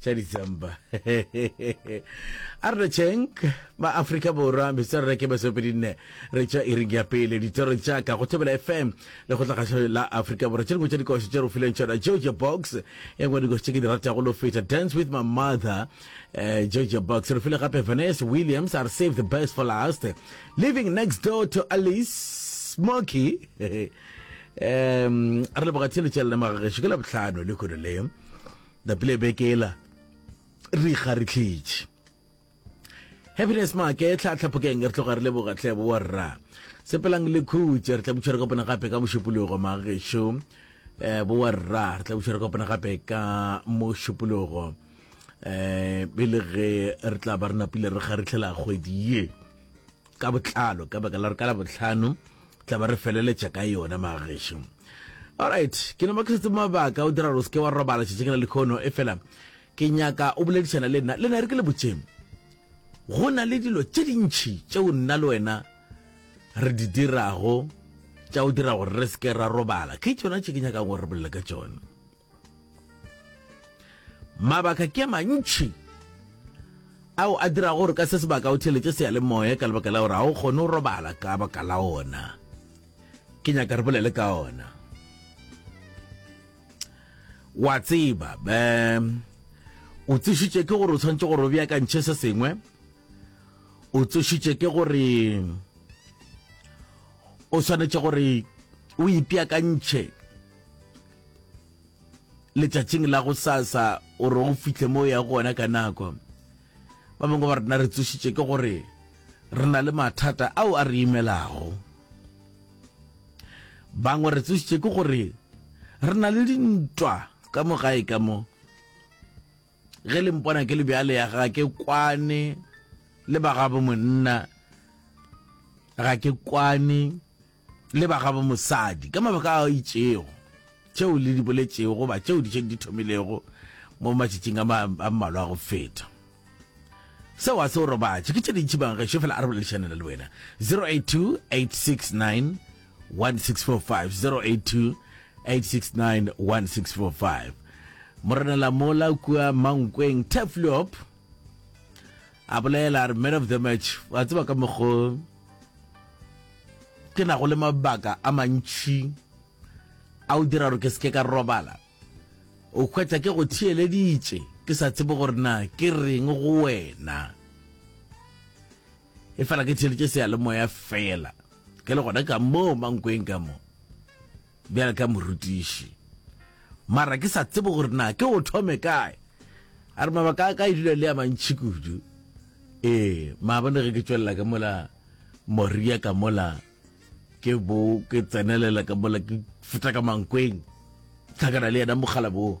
tša December. a re tšheng ba Afrika Borwa metswarere ke masopedi nne re tša iring ya pele ditoro tša ka go thobela FM le go tlagašo la Afrika Borwa tše dingwe tša dikoši tše re fileng tšona Georgia Box e nngwe dikoši tše ke di ratago lo feta Dance with my mother uh, Georgia Box re file gape Vanessa Williams are save the best for last living next door to Alice Smoky um re leboga tsheletšelela magageso ke la botlhano le kgolo leo Napile beke ela re ga re tlhetše happiness make tlha tlhaphokeng re tloga re le bogatlebo wa rra sepelang le khutse re tla butšhwere kopana gape ka mošupologo magešo um eh, bo wa rra re tla butšhwere kopana gape ka mošupologo um eh, pele ge re tla ba re napile re kgaritlhela kgwedi ye ka botlalo ka baka la gore ka labotlhano tla ba re feleletša ka yona magešo alright ke no makisetse mabaka o dira gore o seke wa robala tšhetše ke na le kgono e fela ke nyaka o boledišana le nna le nna re ke le botšeng go na le dilo tše dintšhi tšeo nna le wena re di dirago tša o dira gore re seke ra robala ke tsona tše ke nyakang gore re bolele ka tsone Mabaka ke a mantši ao a dirago gore ka se sebaka o theletše seyalemoya ka lebaka la gore ga o kgone go robala ka baka la ona ke nyaka re bolele ka ona wa tseba be o tsešitše ke gore o tshwanetse gore o beakantšhe se sengwe o tsešitše ke gore o swanetše gore o ipeakantšhe letšatšing la go sasa o re o fihle mo ya gona ka nako ba bangwe ba rena re tsošitše ke gore re na le mathata ao a re imelago bangwe re tsošitše ke gore re na le dintwa ka mo gae ka mo ge le mpona ke le bjale ya ga ke kwane le ba gabo monna ga ke kwane le ba gabo mosadi ka mabaka a itšego, tšeo le di boletšego goba tšeo di šeng di thomilego mo matšatšing a mmalwa a go feta. Seo a se o robatše, ke tše dintši bang gešo fela a re boledišanela le wena 082 869 1645 082 869 1645 Morenela mola kua Mankweng Tefliop A bolela a re, Man of the match, wa tseba ka mokgo ke nago le mabaka a mantšhi a o dira gore ke seke ka robala o hwetša ke go theeleditše ke sa tsebe gore na ke reng go wena e fela ke theeleditše seyalemoya fela ke le gona ka moo mankweng ka moo Bjale ka morutiši, mara ke sa tsebe gore na ke o thome kae. A re mabaka a ka e dula le a mantši kudu. Ee, maabone ge ke tšwelela ka mola Moria ka mola, ke bo ke tsenelela ka mola ke feta ka mankweng, hlakana le yena mokgalabo wo.